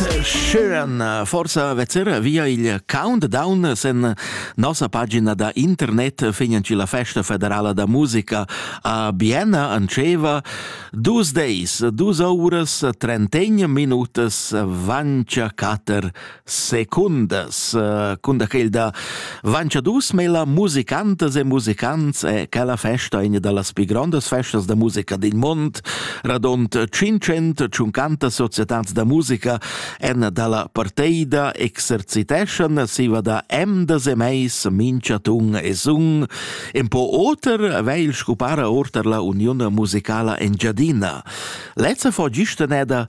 Schön, forsa vezzera via il countdown sen nossa pagina da internet fignan ci la festa federala da musica a Bienna anceva dus days, dus auras, trentegn minutas, vancia cater secundas, cunda che il da Vancha dus mela musicantas e musicants e quella festa in da las pii grandas festas da musica d'in mond, radont 500 tschuncantas societats da musica en dalla parteida exerciteschan siva da emdas e meis minchatun e sun, en po oter vegl scupara orter la Uniun musicala Engiadina. Lezza fo gista neda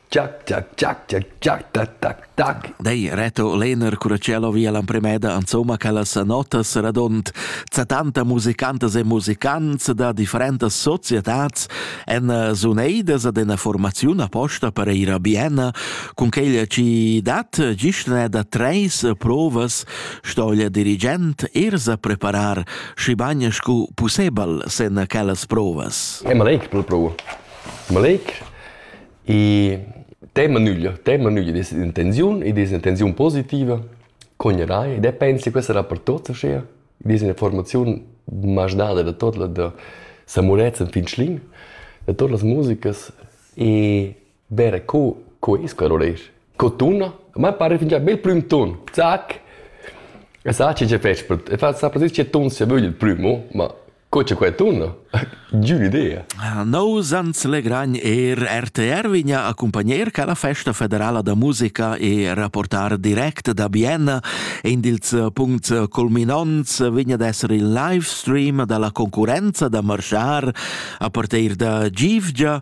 Giac, giac, giac, giac, giac, tac, tac, tac. Dei Reto Lehner Curachello via l'emprimeda insomma quellas notas radond tanta musicantas e musicants da differentas societats en eh, suneidas ad una formaziun apposta per ir a Bienna cun quella ci dat gistne da treis provas stoglia dirigent ersa preparar schi bagn scu possibel sen quellas provas. Emmelik, prov. Emmelik, E tema nügl, tema nügl ed es intenziun, ed es intenziun positiva, cognerai, ed pensi che questa era per tuots aschia. Ed es üna formaziun mach dada da tot la da Samurezz fin Schlin, da tot las musicas e vera co co es quel oresch, co tuna, ma pare fingià bel prüm ton, zac. E sa che ce fetsch per e fa sa precis che ton sia vögl il prüm, oh, ma Co c'è quei tuno? Giù l'idea. Nous ans legragn er RTR vigna accompagner ca la festa federala da musica e rapportar direct da Vienna. In dils puncts culminants vigna d'esser il live stream dalla concurenza da marschar a partir da Givgia